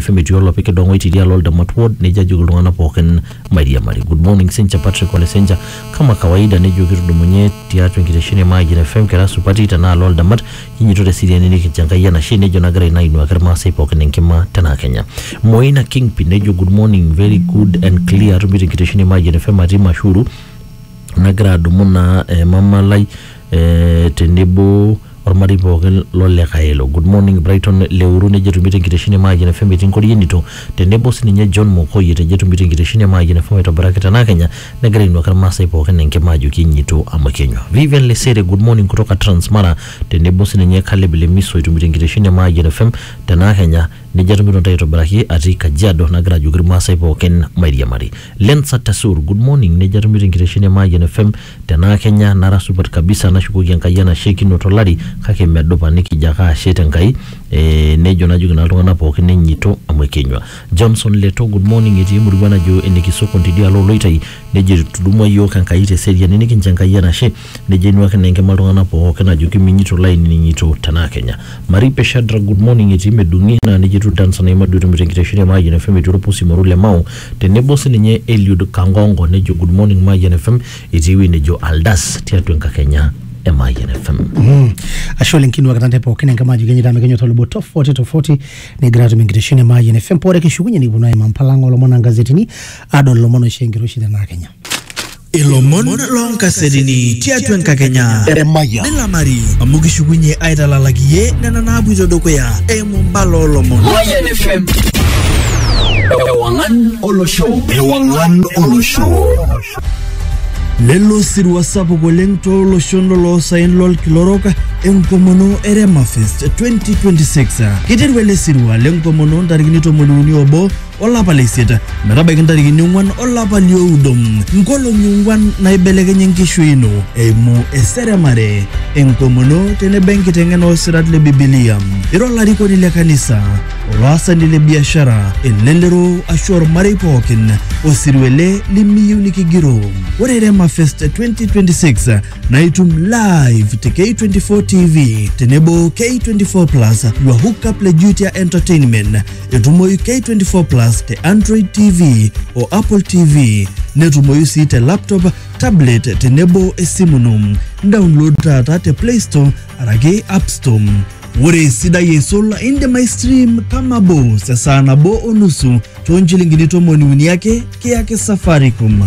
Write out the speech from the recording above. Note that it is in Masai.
FM etii olopik kidong'oi tidialo Oldamat Ward nejo ajoki iltung'anak pookin mairiamari. Good morning Senja Patrick Ole Senja. Kama kawaida nejo kitudumunye tiatua enkitesheni e Mayian FM kira supati tenaalo Oldamat kinyito te seriani nikincho Enkai enashe nejo nagira ina ainuaki Irmaasai pookin enkima tenaa Kenya. Moina Kingpin nejo good morning very good and clear atumito enkitesheni e Mayian FM atii Mashuru nagira adumu naa eh, mama lai eh, tenebo ormarei pookin lole Kaelo. Good morning Brighton Leuru nejo etumi tenkitesheni e Mayian FM etii Nkorienito tenebo sininye John Mokoi etejo etumi tenkitesheni e Mayian FM aitobiraki tenaa Kenya negira ainuaki irmaasai pookin enkima ajoki enyitu amu kenywa. Vivian Lesere good morning kutoka Transmara tenebo sininye Caleb Lemiso etumi tenkitesheni e Mayian FM tenaa Kenya nejo atumito ntae aitobiraki atii Kajiado nagira ajoki irmaasai pookin mairiamari. Lensa Tasur good morning nejo atumito enkitesheni e Mayian FM Tenaa kenya nara supat kabisa nashukoki Enkai enashe kinoto olari kake medupa nikijo ake ashe te Nkai ee nejo najoki naa iltung'ana pooki nenyito amu ekenyua. Johnson Leto, Good morning etii emurua najo ene Kisokon tidialo oo Loitai nejo etudumua iyiook Enkai te seriani nikincho Enkai enashe nejo ainuaki naa enkima iltung'ana pooki ajoki minyito laininin'ito tenaa kenya. Maripe Shadrack, Good morning etii Medung'i naa nejia etiu Danson Aimadu etumito enkitesheni e Mayian FM etii olpusi moruo le Mao Tenebo sininye Eliud Kangongo nejo good morning Mayian FM etii ewueji nejo Aldas tiatua enkakenya e Mayian FM. ashe oleng kinuak tante pookin enkama ajo kenyita mekenyota lubo tofauti tofauti negira atum enkitesheni e Mayian FM pore kishukunye nikiponu aimaa mpalang olomon ongazetini adol ilomon oisho enkiroshi tenaa Kenya Ilomon loonkasetini tiatua enkakenya Emayian. nilamari amu kishukunye aitalalak iye nena naapuito dukuya eimu mbala oolomon. Mayan FM. Ewangan Olosho. Ewangan Olosho. Lelo sirua sapuk oleng tooloshon loloosaen lolkila orok enkomono e Remafest 2026. Kiteru ele sirua lenkomono ntarikini tomoniuni obo olapa le isiet metabaiki ntarikini ong'uan olapa lioudo nkolong'i ong'uan naibelekenye enkishui ino eimu eseremare enkomono tenebo enkiteng'ena oosirat le bibilia ira olarikoni le kanisa olaasani le biashara elelero ashu ormarei pookin osirua ele limiyieu nikigiroo ore rema fest 2026 naa itum live te k24 tv tenebo k24 plus your hookup le jutia entertainment Etumoyu K24 Plus te Android TV o Apple TV. Netumoyu sii te laptop, tablet tenebo esimu ino. Download taata te Play Store araki App Store. Ore esidai eisul indim aistream kama bos esaa nabo o nusu too nchilingini tomoni uni ake kiyaki Safaricom.